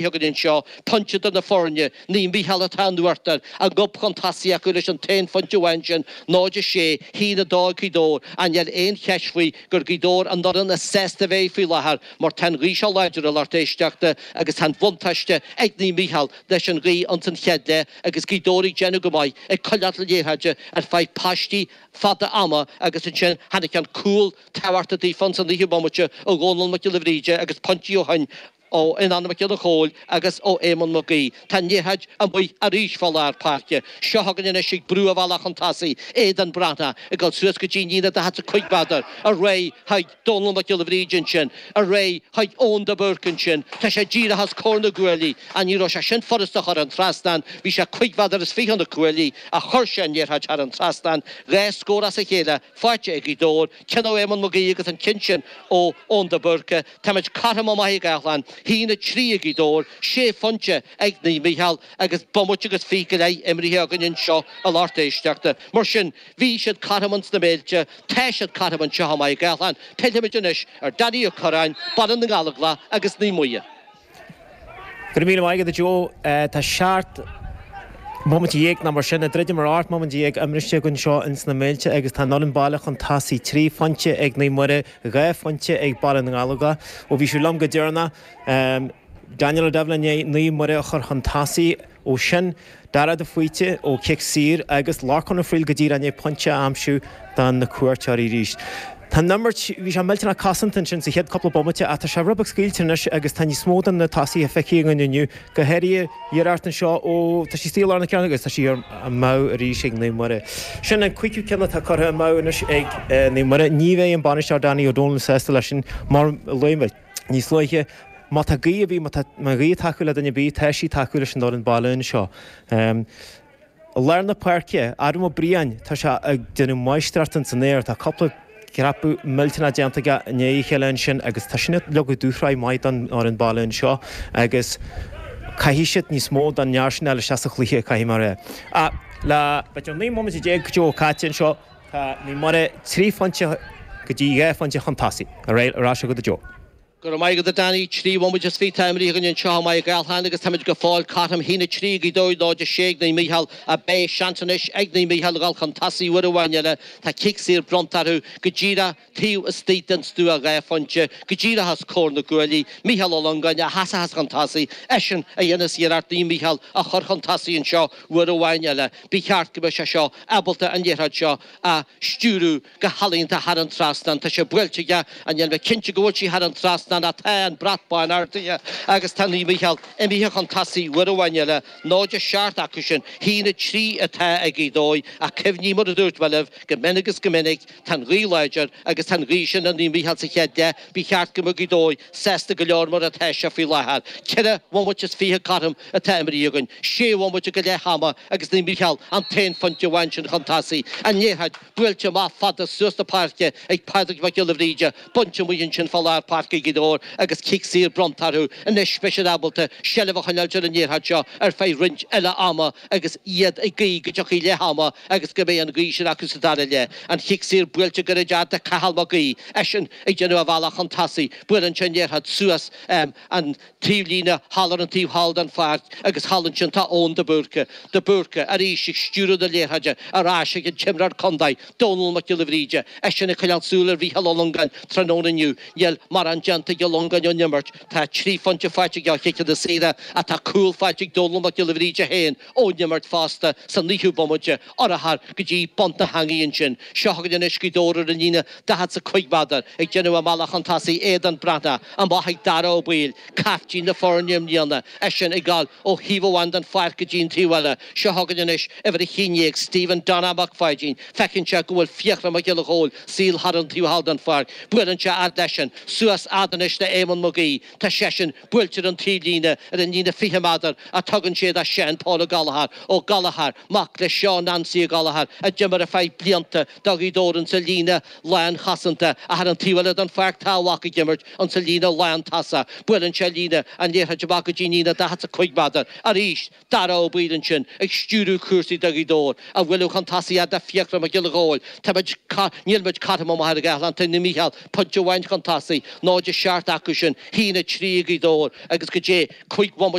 Beagán anseo, pointe idir na foirne, Naomh Mícheál atá in uachtar, a ngob chun tosaigh acu leis an t-aon phointe amháin sin, 0 6, a haon a dó ag Gaoth Dobhair, ach níl aon cheist faoi gur Gaoth Dobhair an fhoireann is sásta a bheidh faoi láthair mar tá an ghaoth seo láidir a lucht éisteachta agus tá an bhuntáiste ag Naomh Mícheál leis an ghaoth ins an chéad leath agus Gaoth Dobhair ag déanamh go maith ag coinneáil liathróide ar feadh paistí fada ama agus ansin tháinig an cúl tábhachtach daofa ins an fhichiú bomaite ó Dhónal Mac Giolla Bhríde agus pointí ó shin Ó Fhionnán Mac Giolla Chomhaill agus ó Éamonn Mac Aoidh, tá an liathróid amuigh arís fá lár páirce. Seo chugainn anois ag brú a bhealaigh chun tosaigh, Aodán Breathnach ag dul suas go dtí líne daichead 's a cúig mheadar, ar aghaidh chuig Dónal Mac Giolla Bhríde ansin, ar aghaidh chuig Eoin de Búrca ansin, tá sé díreach os comhair na gcuaillí, á ní raibh sé sin furasta a chur thar an trasnán, bhí sé cuig mheadar is fiche ó na cuaillí, ach chuir sé an liathróid thar an trasnán, dhá scór as a chéile faighte ag Gaoth Dobhair, Cionn ó Éamonn Mag Aoidh agus an cionn sin ó Eoin de Búrca, Táimid cothrom i Machaire Gathlán, a haon a trí ag Gaoth Dobhair, sé phointe ag Naomh Mícheál agus bomaite agus fiche go leith imrithe againn anseo a lucht éisteachta. Mar sin, bhí siad cothrom sna Méilte, tá siad cothrom anseo i Machaire Gathlán. Pillfimid anois ar Danny Ó Corráin, Baile na nGallóglach agus Naomh Muire. Go raibh míle maith agat, a Joe. Tá seacht mbomaite dhéag, nó mar sin, ag druidim ar ocht mbomaite dhéag imrithe againn anseo ins na Méilte agus tá an fhoireann baile chun tosaigh, trí phointe ag Naomh Muire, dhá phointe ag Baile na nGallóglach. Ó bhí sibh liom go deireanach, Daniel O'Devlin i ndiaidh Naomh Muire a chur chun tosaigh. Ó shoin, Darragh de Faoite ó chic saor agus Lorcán Ó Fríl go díreach i ndiaidh pointe a aimsiú do na cuairteoirí arís. Tá an imirt, bhí sé millteanach cosanta ansin sa chéad cúpla bomaite ach tá sé rud beag scaoilte anois agus tá níos mó de na tosaithe feicthe againn inniú, go háirithe Gerard anseo ó tá sí saor lár na ceann agus tá sí amú arís ag Naomh Muire. Sin an cúigiú ceann atá curtha amú anois ag Naomh Muire. Ní bheidh an bainisteoir Danny Ó Dónaill sásta leis sin mar luaigh mé. níos luaithe, Má tá gaoth ar bith, má tá an ghaoth ag tacú le duine ar bith, tá sí ag tacú leis an fhoireann baile anseo. I lár na páirce, Adam Ó Briain, tá sé ag déanamh máistreacht ins an aer, tá cúpla dhreapadh millteanach déanta aige i ndiaidh a chéile ansin agus tá sin ag leagadh dúshraith maith don fhoireann baile anseo agus caithfidh siad níos mó a dhéanamh mar sin leis sa chluiche, caithfidh, mar le hocht nó naoi mbomaite déag go deo caite anseo. Tá Naomh Muire trí phointe go dtí dhá phointe chun tosaigh. Ar ais chugat, a Joe. Go raibh maith agat, a Danny. Trí bhomaite is fiche atá imrithe againn anseo i Machaire Gathlán agus táimid go fóill cothrom. A haon a trí ag Gaoth Dobhair, 0-6 ag Naomh Mícheál. Ach beidh seans anois ag Naomh Mícheál a dhul chun tosaigh uair amháin eile. Tá cic saor bronnta orthu go díreach. taobh istigh den stua dhá phointe go díreach os comhair na gcuaillí, Micheál Ó Longáin a sheasfas chun tosaigh, eisean a dhéanfas iarracht Naomh Mícheál a chur chun tosaigh anseo uair amháin eile. Ba cheart go mbeadh sé seo ábalta an liathróid seo a stiúradh go healaíonta thar an trasnán. Tá sé buailte aige níl mé cinnte go bhfuil sí thar an trasnán ach tá an brat bán ardaithe agus tá Naomh Mícheál imithe chun tosaigh uair amháin eile. Náid a seacht acu sin. A haon a trí atá ag Gaoth Dobhair ach cuimhnigh mar a dúirt mé libh go mion agus go minic, Tá an ghaoth láidir agus tá an ghaoth sin ag Naomh Mícheál sa chéad leath. Ba cheart go mbeadh Gaoth Dobhair sásta go leor mar atá sé faoi láthair. Ceithre bhomaite is fiche cothrom atá imeartha againn, sé bhomaite go leath ama agus Naomh Mícheál an t-aon phointe amháin sin chun tosaigh an liathróid. Buailte amach fada suas na páirce ag Pádraig Mac Giolla Bhríde, bainte amuigh ansin fá lár páirce ag Gaoth Dobhair agus cic saor bronnta orthu. Anois beidh siad ábalta seilbh a choinneáil ar an liathróid seo ar feadh roinnt eile ama. agus iad ag guí go dtiocfaidh leath ama agus go mbeidh an ghaoth sin acu sa dara leath. An chic saor buailte go gairid do Cathal Mag Aoidh, eisean ag déanamh a bhealach chun tosaigh, buaileann sé an liathróid suas an taobhlíne thall ar an taobh thall den pháirc agus thall ansin tá Eoin de Búrca. De Búrca, arís, ag stiúradh na liathróide ar ais ag an t-imreoir contae, Dónall Mac Giolla Bhríde, eisean ag coinneáil súil ar Mhícheál Ó Longáin, tráthnóna inniu, níl mórán déanta ag Ó Longáin ón imirt, Tá trí phointe faighte aige ó chiceanna saora tá cúl faighte ag Dónall Mac Giolla Bhríde féin ón imirt fosta sa naoú bomaite, urchar go dtí bun na heangaí ansin. Seo chugainn anois Gaoth Dobhair ar an líne daichead 's a cúig méadar, ag déanamh a mbealach chun tosaigh, Aodán Breathnach amach ag Dara Ó Baoill, caiftín na foirne i mbliana, eisean ag dul ó thaobh amháin den pháirc go dtí an taobh eile. Seo chugainn anois uimhir a haon déag, Stephen Donna Mac Pháidín, feiceann sé go bhfuil Fiachra Mac Giolla Chóill, Saor thar an taobh thall den pháirc, buaileann sé fhad leisean, suas fhad anois le Éamonn Mag Aoidh, tá seisean buailte ar an taobhlíne ar an líne 20 méadar a tugann sé do Seán Pól Ó Gallchóir, Ó Gallchóir, mac le Seán Nancy Ó Gallchóir a d'imir ar feadh blianta do Ghaoth Dobhair insa líne lán chosanta, ach thar an taobh eile den pháirc tá a mhac ag imirt insa líne lán tosaigh, buaileann sé líne an liathróid amach go dtí líne 45 méadar, aríst. Dara Ó Baoill ansin ag stiúradh cúrsaí do Ghaoth Dobhair, a bhualadh chun tosaigh do Fiachra Mac Giolla Chóill, tá muid, níl muid caithte amuigh ar an gcathlán, tá Naomh Mícheál pointe amháin chun tosaigh, náid a seacht acu sin, a haon a trí ag Gaoth Dobhair agus go dtí cúig